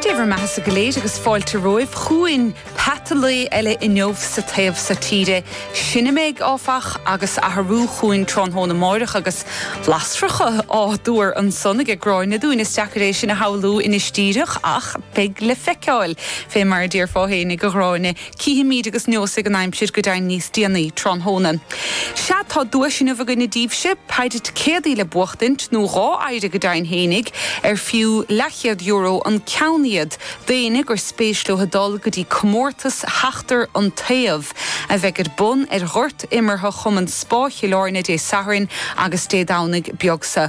Dé bhur mbeatha-sa go léir agus fáilte romhaibh chugainn peata lae eile inniu sa taobh so tíre. Sin a mbeidh, áfach, agus athrú chughainn tráthnóna amárach agus bleaisteacha á dtuar ansan aige Gráinne dúinn. Is deacair é sin a shamhlú anois díreach ach beidh le feiceáil, fé mar a déarfá féinig, a Ghráinne. Cífimíd agus neósfaidh an aimsir go deimhin níos déanaí tráthnóna. Sea, tá duais inniu againne díbhse, péire ticéadaí le buachtaint, nó dhá phéire go deimhin fhéinig, ar fiú leathchéad euro an ceann iad, d'éinne gur spéis leo dul go dtí comórtas Sheachtar an Taobh, a bheidh ar bun ar ghort imeartha Chumann Spá Chill Áirne Dé Sathairn agus Dé Domhnaigh beag seo.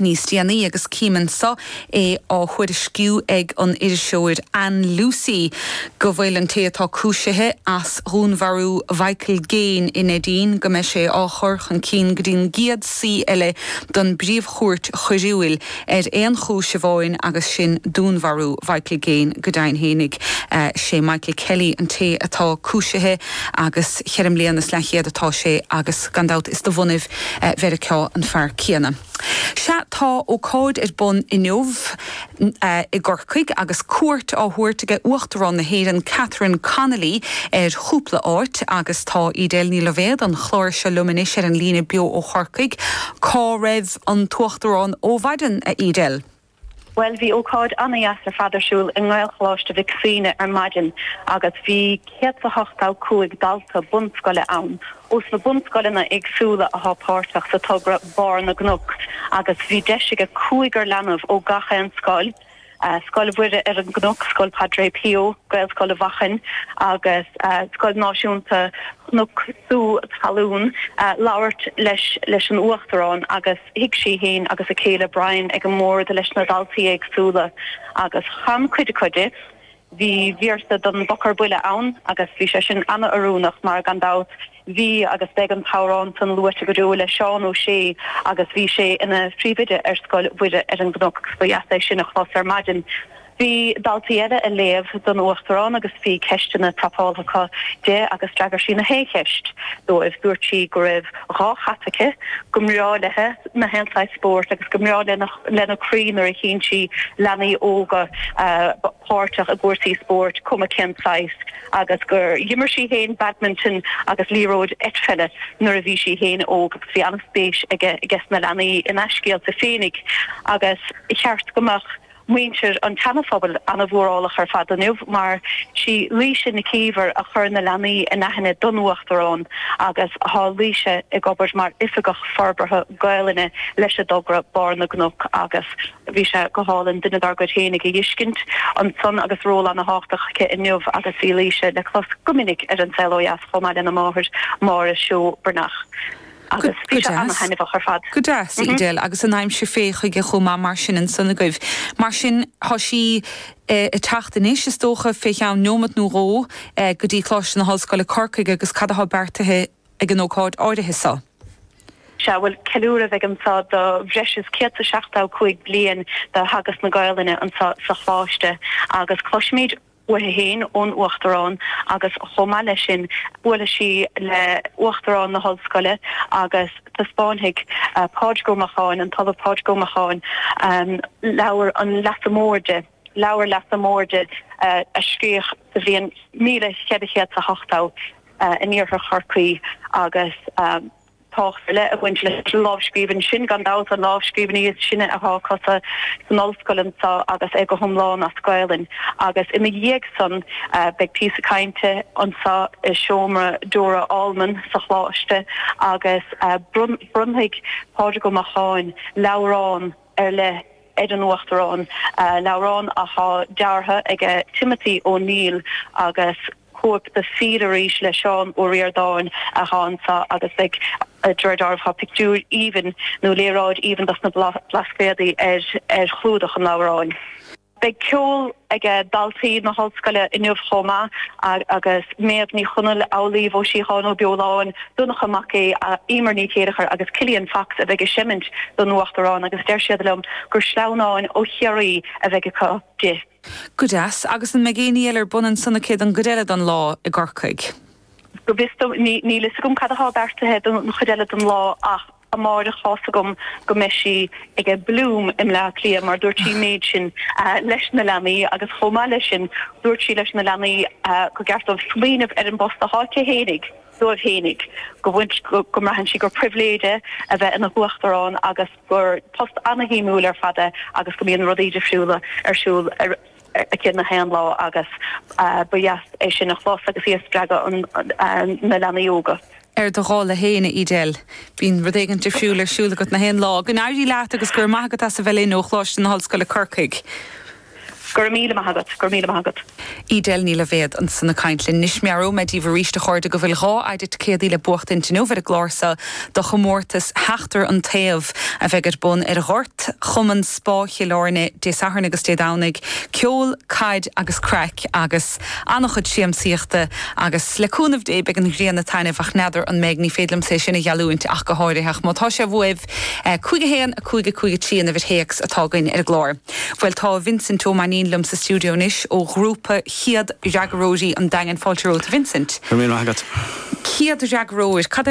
níos déanaí agus cím ansan é á thuairisciú ag an iriseoir Anne Lucey go bhfuil an té atá cúisithe as dhúnmharú Mhichael Gaine i Neidín, go mbeidh sé á chur chun cinn go dtí an gcéad suí eile don bPríomh-Chúirt Choiriúil ar aon chúis amháin agus sin dúnmharú Mhichael Gaine go deimhin fhéinig. Sé Michael Kelly an té atá cúisithe agus cheithre mbliana is leathchéad atá sé agus gan dabht is de bhunadh Mheiriceá an fear céanna. Sea, tá ócáid ar bun inniu i gCorcaigh agus cuairt á thabhairt ag Uachtarán na hÉireann Catherine Connolly ar chúpla áit agus tá Edel Ní Loibhéad an chláir seo liom anois ar an líne beo ó Chorcaigh. Cá raibh an tUachtarán ó mhaidin, a Edel? Bhuel, bhí ócáid ana-dheas ar fad ar siúl i nGaelcholáiste Mhic Shuibhne ar maidin agus bhí 185 dalta bunscoile ann ó sna bunscoileanna éagsúla a thá páirteach sa togra Barr na gCnoc agus bhí deis aige cúigear leanbh ó gach aon scoil, Scoil Mhuire ar an gCnoc, Scoil Padre Pio, Gaelscoil Mhachan agus Scoil Náisiúnta Chnoc Sú Talún, labhairt leis an Uachtarán agus. Shuigh sí féin agus a céile Brian ag an mbord leis na daltaí éagsúla agus chan cuid acu di. Bhí véarsa don bPoc ar Buile ann agus bhí sé sin ana-oiriúnach mar, gan dabht, bhí agus beidh an t-amhrán san luaite go deo le Seán Ó Sé agus bhí sé ina phríomhoide ar Scoil Mhuire ar an gCnoc agus ba dheas é sin a chlos ar maidin. Bhí daltaí eile ag léamh don Uachtarán agus bhí ceisteanna prapálta acu di agus d'fhreagair sí nach aon cheist dóibh. Dúirt sí go raibh dhá chat aici, go mbreá léithe nach aon saghas spóirt agus go mbreá lena croí nuair a chíonn sí leanaí óga páirteach i gcúrsaí spóirt cuma cén saghas agus gur dh'imir sí féin badminton agus liathróid eitpheile nuair a bhí sí féin óg agus bhí an-spéis aige sna leanaí ina scéalta féinig agus ba cheart go mbeadh muintir an tSeanaphobail an-mhórálach ar fad inniu, mar sí Laoise Nic Íomhair a chuir na leanaí in aithne don Uachtarán agus tá Laoise ag obair mar Oifigeach Forbartha Gaelainne leis an dtogra Barr na gCnoc agus bhí sé go hálainn duine dár gcuid féinig a fheiscint ansan agus ról ana-thábhachtach aici inniu agus bhí Laoise le clos go minic ar An Saol Ó Dheas chomh maith lena máthair Máire Seó Breathnach. Agus bhí sé ana-thaitneamhach ar fad. Go deas, a Edel, agus an aimsir fé chuige chomh maith mar sin ansan agaibh. Mar sin, tá sí ag teacht anois, is dócha, fé cheann neomat nó dhó, go dtí Coláiste na hOllscoile, Corcaigh, agus cad atá beartaithe ag an ócáid áirithe so? Sea, bhuel, ceiliúradh a bheidh anso do bhreis is céad 's a seachtó cúig bliain de theagasc na Gaelainne anso sa Choláiste, agus cloisfimid uaithi féin ón Uachtarán agus chomh maith leis sin buailfidh sí le hUachtarán na hOllscoile agus taispeánfaidh Pádraig Ó Macháin, an tOllamh Pádraig Ó Macháin, leabhar an Leasa Mhóir di, leabhar Leasa Mhóir di a scríodh sa bhliain míle cheithre chéad 's a hochtó in iarthar Chorcaí agus. tábhacht ar leith ag baint leis an lámhscríbhinn sin, gan dabht an lámhscríbhinn is sine atá acu sa san ollscoil anso agus é go hiomlán as Gaelainn, agus ina dhiaidh san beidh píosa cainte anso i seomra Dora Allman sa Choláiste agus bronnfaidh Pádraig Ó Macháin leabhrán ar leith ar an Uachtarán, leabhrán atá deartha aige Timothy O'Neill agus. cóip de Fill Arís le Seán Ó Ríordáin athá anso agus de réir dealraimh tá pictiúr aoibhinn nó léaráid aoibhinn dos na Blascaodaí ar chlúdach an leabhráin. Beidh ceol ag daltaí na hOllscoile inniu chomh maith agus Méabh Ní Chonaill, Amhlaoibh Ó Síocháin Ó Beoláin, Donncha Mac Aoidh, Emer Ní Chéilleachair agus Killian Fox a bheidh ag seimint don Uachtarán agus deir siad liom gur sleamhnáin ó Chiarraí a bheidh acu di. Go deas. Agus an mbeidh éinní eile ar bun ansan aici don gcuid eile den lá i gCorcaigh? Go bhfios dom, níl a fhios agam cad atá beartaithe don chuid eile den lá ach amáireach thá's agam go mbeidh sí ag ag Bloom i mBleá Cliath mar dúirt sí an méid sin leis na leanaí agus chomh maith leis sin dúirt sí leis na leanaí go gceart dóibh smaoineamh ar an bpost athá aici fhéinig dóibh fhéinig go bhfuil go mbraitheann sí gur pribhléid é a bheith ina huachtarán agus gur post ana-shuimiúil ar fad é agus go mbíonn rudaí difriúla ar siúl aici nach aon lá agus ba dheas é sin a chlos agus í ag spreagadh na leanaí óga. Ar do dhála féin, a Edel, bíonn rud éigin difriúil ar siúl agat nach aon lá. Go n-éirí leat agus go raibh maith agat as a bheith linn ó Choláiste na hOllscoile Corcaigh. Go raibh míle maith agat, go raibh míle maith agat. Edel Ní Loibhéad ansan ag caint linn anois. Meabhróidh mé díbh aríst, a chairde, go bhfuil dhá thicéad le buachtaint inniu ar an gclár seo do chomórtas Sheachtar an Taobh a bheidh ar bun ar ghort Chumann Spá Chill Airne Dé Sathairn agus Dé Domhnaigh. Ceol, caid agus craic agus an-chuid siamsaíochta agus le cúnamh Dé beidh an ghrian ag taitneamh ach n'fheadar an mbeidh, ní féidir liomsa é sin a gheallúint ach go háirithe ach má tá sé uaibh, 5 1, 5 5 3 an uimhir théacs atá againn ar an gclár. Bhuel, tá Vincent Ó Mainnín liom sa stiúideo anois, ó ghrúpa chéad fhreagróirí an Daingin. Fáilte romhat, a Vincent. Go raibh míle maith agat. Céad fhreagróir, cad é an.